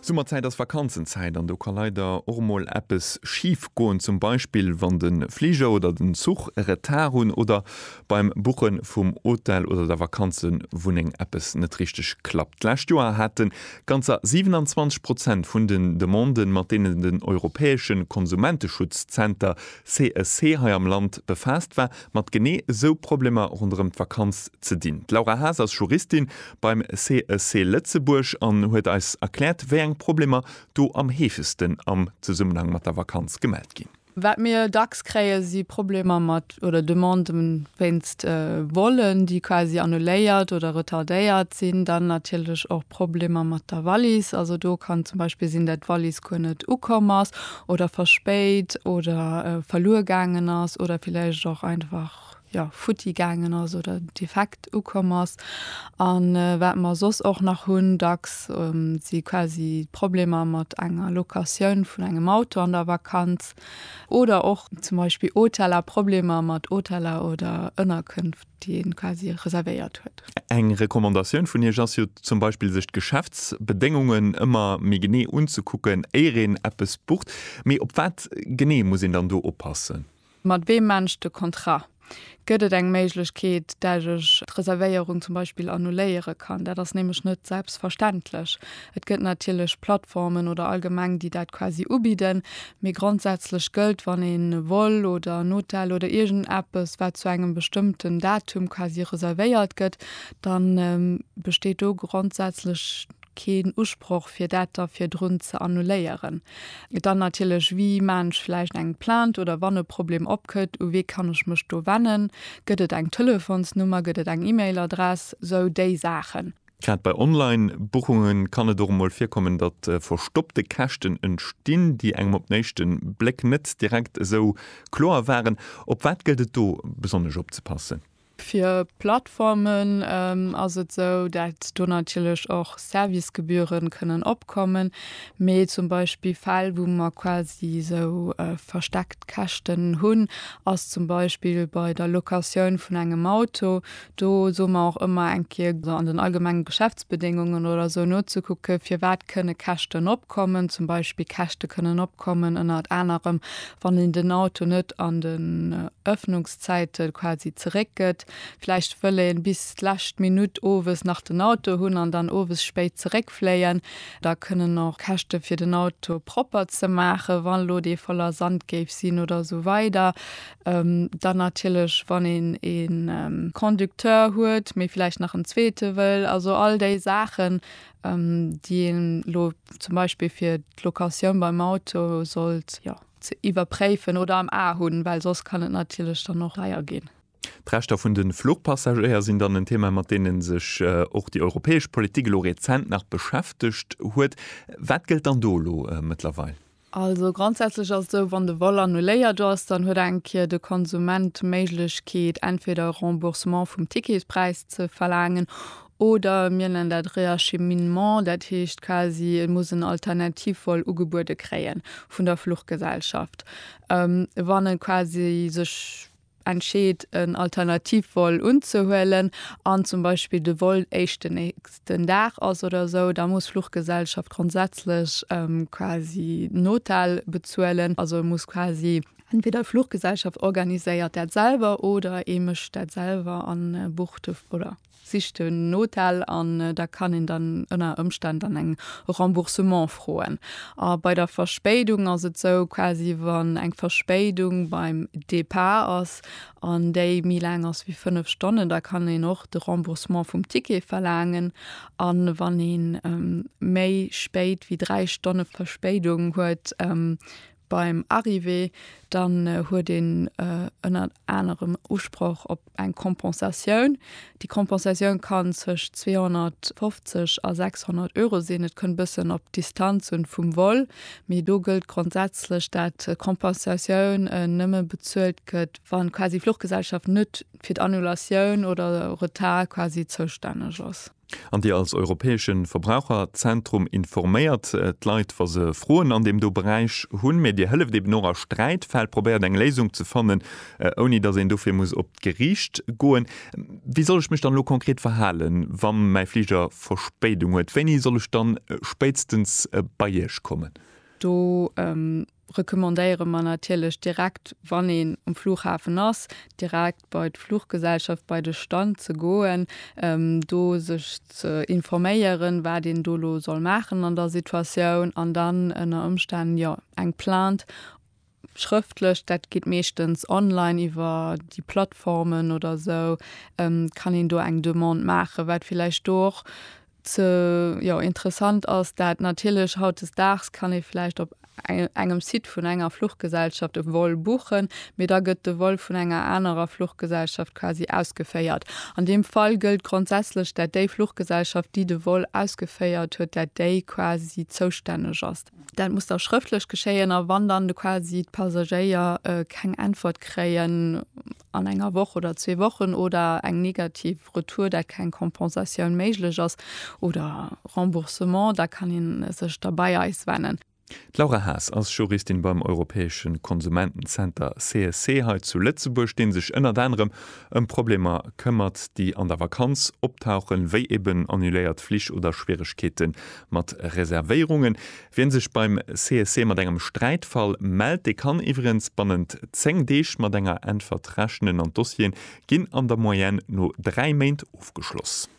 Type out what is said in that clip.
Summerzäit ass Vakanzenzäit an do ka leider och mol eppes schif goen, zum Beispill wann de Fliger oder den Zuch e Retard hunn oder beim Buche vum Hotel oder der Vakanzewunneng eppes net richteg klappt. D'lescht Joer hate ganzer 27 Prozent vun den Demanden, mat deenen den europäesche Konsumenteschutzzenter CSC hei am Land befaasst war, mat genee esou Problemer ronderëm d'Vakanz ze dinn. D'Laura Haas ass Juristin beim CEC Lëtzebuerg an huet eis erkläert, wéi eng Problemer do am heefegsten am Zesummenhang mat der Vakanz gemellt ginn. Wat mir dacks kréien, si Problemer mat oder Demanden wéinst Vollen, déi quasi annuléiert oder retardéiert sinn. Dann natierlech och Problemer mat der Wallis. Also do kann zum Beispill sinn, dat d'Wallis guer net ukomm ass oder verspéit oder verluer gaangen ass oder villäicht och einfach jo futti gaangen ass oder defekt ukomm ass. An wat mer soss och nach hunn dacks si quasi Problemer mat enger Locatioun vun engem Auto an der Vakanz oder och zum Beispill Hoteller, Problemer mat Hoteller oder Ënnerkënft, déi ee quasi reservéiert huet. Eng Recommandatioun vun Iech ass jo zum Beispill, sech d'Geschäftsbedéngungen ëmmer méi genee unzekucken, éier een eppes bucht. Mee op wat genee muss een dann do oppassen? Mat weem maan ech de Contrat? Gëtt et eng Méiglechkeet, dat ech d'Reservéierung zum Beispill annuléiere kann? Dat ass nämlech net selbstverständlech. Et gëtt natierlech Plattformen oder allgemeng, déi dat quasi ubidden, mee grondsätzlech gëllt, wann een e Vol oder en Hotel oder iergendeppes, wat zu engem bestëmmten Datum quasi reservéiert gëtt, dann besteet do grondsätzlech. keen Usproch fir dat da virdrun ze annuléieren. Dann natierlech, wie maan ech vläicht eng Plainte oder wann e Problem opkëtt, u wee kann ech mech do wennen, gëtt et eng Telefonsnummer, gëtt et eng E-Mail-Adress, sou déi Saachen. Grad bei Online-Buchunge kann et och emol virkommen, datt verstoppte Käschten entstinn, déi engem op den éischte Bléck net direkt esou kloer waren. Op wat gëllt et do besonnesch opzepassen? Fir Plattformen ass et esou, dat do natierlech och Servicegebühren kënnen opkommen, mee zum Beispill Fäll wou mer quasi esou versteckt Käschten hunn, ass zum Beispill bei der Locatioun vun engem Auto. Do soe mer och ëmmer eng Kéier an den allgemenge Geschäftsbedéngungen oder esou nozekucke firwat kënne Käschten opkommen. Zum Beispill Käschte kënnen opkommen ënnert anerem wann een den Auto net an den Öffnungs. Zäite quasi zeréck gëtt. Vläicht wëll ee bis d'lescht Minutt owes nach den Auto hunn an dann owes spéit zeréckfléien. Da kënnen och Käschte fir den Auto propper ze maachen, wa lo dee voller Sand géif sinn oder esou weider. Dann natierlech wann een e Conducteur huet, mee vläicht nach en zweete wëll. Also all déi Saachen, déi ee lo zum Beispill fir d'Locatioun beim Auto sollt, jo. ze iwwerpréifen oder am A hunn, well soss kann et natierlech dann och deier ginn. D'Rechter vun de Fluchpassagéier sinn dann en Thema, mat deene sech och déi europäesch Politik elo rezent nach beschäftegt huet. Wat gëllt dann do elo mëttlerweil? Also grondsätzlech ass et esou, wann de Vol annuléiert ass, dann huet eng Kéier de Konsument d'Méiglechkeet, entweder e Remboursement vum Ticketspräis ze verlaangen Oder mir nennen dat Réacheminement, dat heescht quasi, et muss en Alternativvol ugebuede kréien vun der Fluchgesellschaft. Wann e quasi sech entscheet, en Alternativvol unzehuelen an zum Beispill de Vol éischt den nächsten Dag ass oder esou, da muss d'Fluchgesellschaft grondsätzlech quasi den Hotel bezuelen. Also muss quasi entweder d'Fluchgesellschaft organiséiert dat selwer oder ee mécht dat selwer a bucht de, oder? Sicht en Hotel an da kann een dann ënner Ëmstänn dann eng Remboursement froen. A bei der Verspéidung ass et sou, quasi wann eng Verspéidung beim Départ ass an déi méi laang ass wéi 5 Stonnen, da kann een och de Remboursement vum Ticket verlaangen. A wann ee méi spéit wéi 3 Stonne Verspéidung huet, Beim Arrivée dann huet een ënnert anerem Usproch op eng Kompensatioun. Déi Kompensatioun kann zwëscht 250 a 600 Euro sinn. Et kënnt e bëssen op d'Distanz un vum Vol, mee do gëllt grondsätzlech, dat d'Kompensatioun nëmme bezuelt gëtt, wa quasi d'Fluchgesellschaft net fir d'Annulatioun oder Retard quasi zoustänneg ass. An Dir als europäesche Verbraucherzentrum informéiert d'Leit, wa se Froen an deem do Beräich hunn, mä Dir hëlleft eben och a Sträitfäll, probéiert eng Léisung ze fannen, ouni datt een dofir muss op d'Gericht goen. Wéi soll ech mech dann elo konkret verhalen, wa mäi Fliger Verspéidung huet? Wéini soll ech dann spéitstens bei Iech kommen? Do recommandéiere mer natierlech direkt, wann een um Flughafen ass, direkt bei d'Fluggesellschaft, bei de Stand ze goen, do sech ze informéieren, wat een do elo soll maachen an der Situatioun an dann ënner Ëmstänn, jo, eng Plainte schrëftlech, dat geet meeschtens online iwwer déi Plattformen oder esou, kann een do eng Demande maachen, wat villäicht do och ze jo interessant ass dat natierlech hautdesdaags kann ee vläicht op engem Site vun enger Fluchgesellschaft e Vol buchen, mee da gëtt de Vol vun enger anerer Fluchgesellschaft quasi ausgeféiert. An deem Fall gëllt grondsätzlech dat déi Fluchgesellschaft déi de Vol ausgeféiert huet, dat déi quasi zoustänneg ass. Dat muss da schrëftlech geschéien a wann dann quasi d'Passagéier keng Äntwert kréien, an enger Woch oder zwee Wochen oder eng negativ Retour, dat keng Kompensatioun méiglech ass oder Remboursement, da kann ee sech da bei eis wennen. D'Laura Haas ass Juristin beim europäesche Konsumentenzenter CSC hei zu Lëtzebuerg, dee sech ënnert anerem ëm Problemer këmmert, déi an der Vakanz optauchen, wéi eben annuléiert Flich oder Schwieregkeete mat Reservéierungen. Wien sech beim CSC mat engem Sträitfall mellt, dee kann iwwerens bannent 10 Deeg mat enger Äntwert rechnen an d'Dossieren ginn an der Moyenne no 3 Méint ofgeschloss.